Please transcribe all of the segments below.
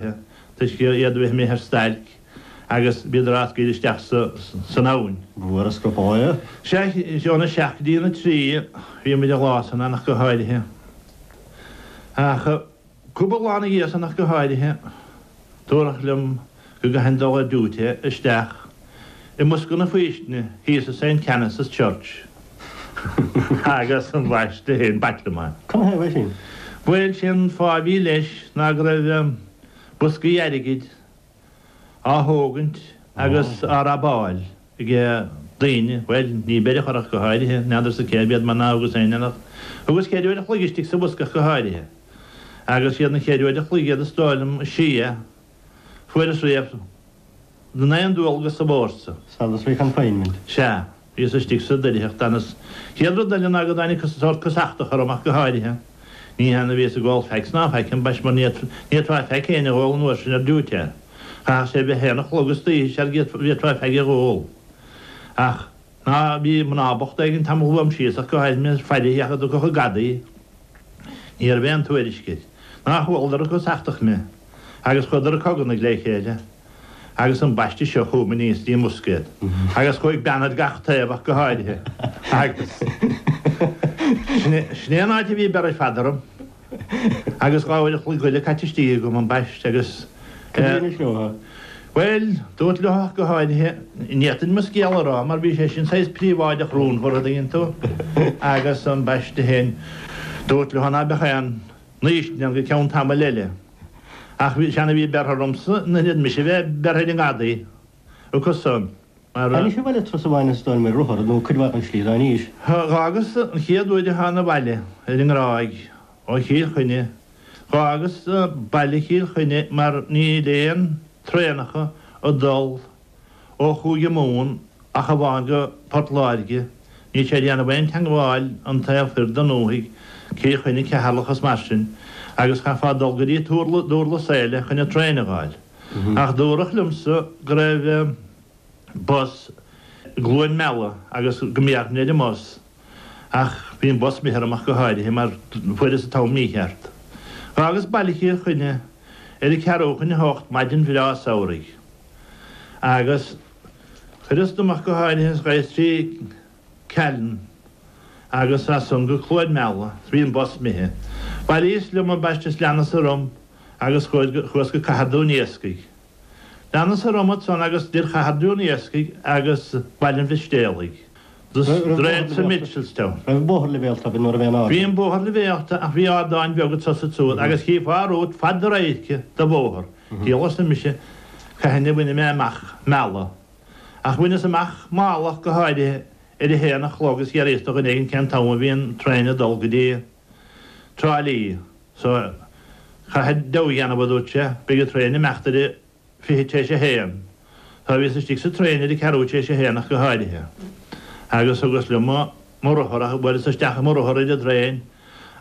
Toisc iad a bheith amuigh ar stailc agus bhíodar á scaoileadh isteach san abhainn. Sea, óna seacht dtí'na trí bhí muid an lá san ann ach go háirithe. Ach cúpla lá ina dhiaidh san ach go háirithe, dúradh liom go gcaithfinn dul ar diúité isteach. I mbosca na faoistine thíos i St Canice's Church agus ambaiste féin b'ait liom é. Cad ina thaobh é sin? Bhuel, sé an fáth a bhí leis ná go raibh boscaí airgid á thógaint agus á robáil ag daoine, bhuel, ní beireadh a chur ach go háirithe, n'fheadarsa cérbh iad mar nár rugas ar éinneach. Thugas cheithre uair an chloig istigh sa bhosca ach go háirithe, agus siad an cheithre uair an chloig iad is dóigh liom is sia. Fuaireas riamh in aon dualgas sa bhfórsa. Solitary confinement. Sea, bhíos istigh sa doircheacht an chéad rud eile ná go dtáinig sórt casachtach orm ach go háirithe. Ní hann a bhíos ag ól fags ná faic ambaist mar ní fhéadfá feaig éinne a dh'ól an uair sin ar diúité. Chaithfeadh sé bheith a haon a chlog istoíche sara bhféadfá feaig a dh'ól. Ach. Ná bhí mná bochta éigin tamall uaim síos ach go háirithe mé ag faire féachaint an dtiocfadh an gadaí. Ní raibh aon tuairisc air. Nár chualadar ag casachtach mé. Agus chuadar ag cogarnaigh le chéile. Agus ambaiste seo chugam aníos dtí'n mbosca iad. Agus chuaigh bean ar gach taobh ach go háirithe. Agus sin é an áit a bhí beirthe ar fad orm. Agus dhá uair a chloig eile caite istigh agam ambaiste agus. Cad é anois leo? Bhuel, dúrt leo ach go háirithe, n'fhéadfainn mo scéal a rá mar bhí sé sin saghas príobháideach rúnmhar, an dtuigeann tú, agus ambaiste féin, dúrt leo ná beadh aon fhaoistin go ceann tamaill eile. Ach bhí, is ann a bhí beirthe ormsa in ionad mise bheith beirthe ar an ngadaí. Agus, mar a. Anois abhaile turas amháin an stoirm ar rothar, nó cuid mhaith den slí. Ná inis. Dh'fhágas an chéad uair a thána abhaile ar an nGráig ó Chill Chainnigh, dh'fhágas baile Chill Chainnigh mar níl aon traenacha ag dul ó Chúige Mumhan ach amháin go Port Láirge, níl sé ag déanamh aon teangmháil an taobh thoir den ndúthaigh, Cill Chainnigh, Ceatharlach is mar sin, agus chaithfeá dul go dtí Durlas Éile chun an traein a dh'fháil. Ach dúradh liomsa go raibh bus i gCluain Meala agus go mbéarfainn ar an mbus. Ach bhí an bus imithe orm ach go háirithe mar fuaireas an t-am mícheart. Dh'fhágas Baile Chill Chainnigh ar a ceathrú chun a hocht maidin bhreá samhraidh. Agus chuireas díom ach go háirithe agus ghabhas trí Callainn, agus as san go Cluain Meala bhí an bus imithe. Bhuaileas liom ambaiste is leanas-sa romham agus chuas go Cathair Dún Iascaigh. Leanas-sa romham ansan agus idir Chathair Dún Iascaigh agus Baile an Mhistéalaigh. Droichead sa Mitchelstown. Bhí an bóthar leibhéalta ach bhí ardáin bheaga tosaigh suas agus chífeá romhat fad do radhairce de bhóthar. Díolas-sa mise cathain a bhain mé amach Mala. Ach bhaineas amach Mala ach go háirithe ar a haon a chlog, is d'fhiafraíos de dhuine éigin cén t-am a bhí an traein ag dul go dtí Trá Lí. So, caithfir deabhadh a dhéanamh, a dúirt sé, beidh an traein ag imeacht ar a fiche tar éis a haon. So, bhíos istigh sa traein ar a ceathrú tar éis a haon ach go háirithe. Agus thugas liom mo rothar, ach bhuaileas isteach mo rothar ar an dtraein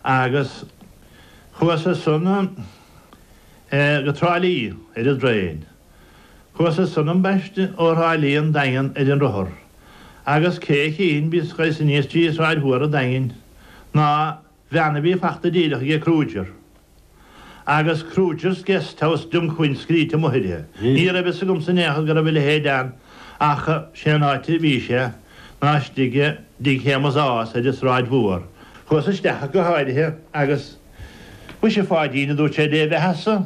agus chuas as san go Trá Lí ar an dtraein. Chuas as san ambaiste ó Thrá Lí 'on Daingean ar an rothar agus cé a chífinn bíonn scoith sa ní istigh i Sráid Mhór an Daingin ná van a bhí fachta díreach aige Kruger agus Kruger's Guest House Dunquin scríte amuigh uirthi. Ní raibh a fhios agamsa in aon chor go raibh a leithéid ann ach sé an áit a bhí sé ná istigh i dTigh Shéamus Ághas ar an Sráid Mhór. Chuas isteach go háirithe agus Muise a Pháidín a dúirt sé Dé bheathasa.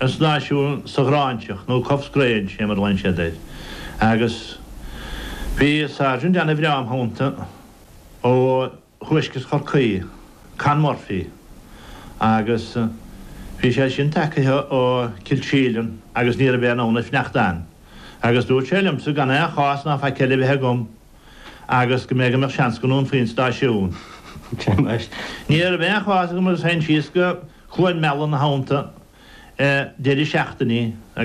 An stáisiún sa Ghráinseach, nó Cuffesgrange, fé mar a ghlaonn siad air, agus bhí sáirsint ana-bhreá im theannta ó thuaisceart Chorcaí, Con Murphy, agus bhí sé sin tagaithe ó Chill Síoláin agus ní raibh aon fhonn air fanacht ann, agus dúirt sé liomsa gan aon chás ná faic eile a bheith agam. agus go mbeadh seans go ndúnfaí an stáisiún. Ní raibh aon chás agam agus théinn síos go Cluain Meala nach aon deireadh seachtaine agus.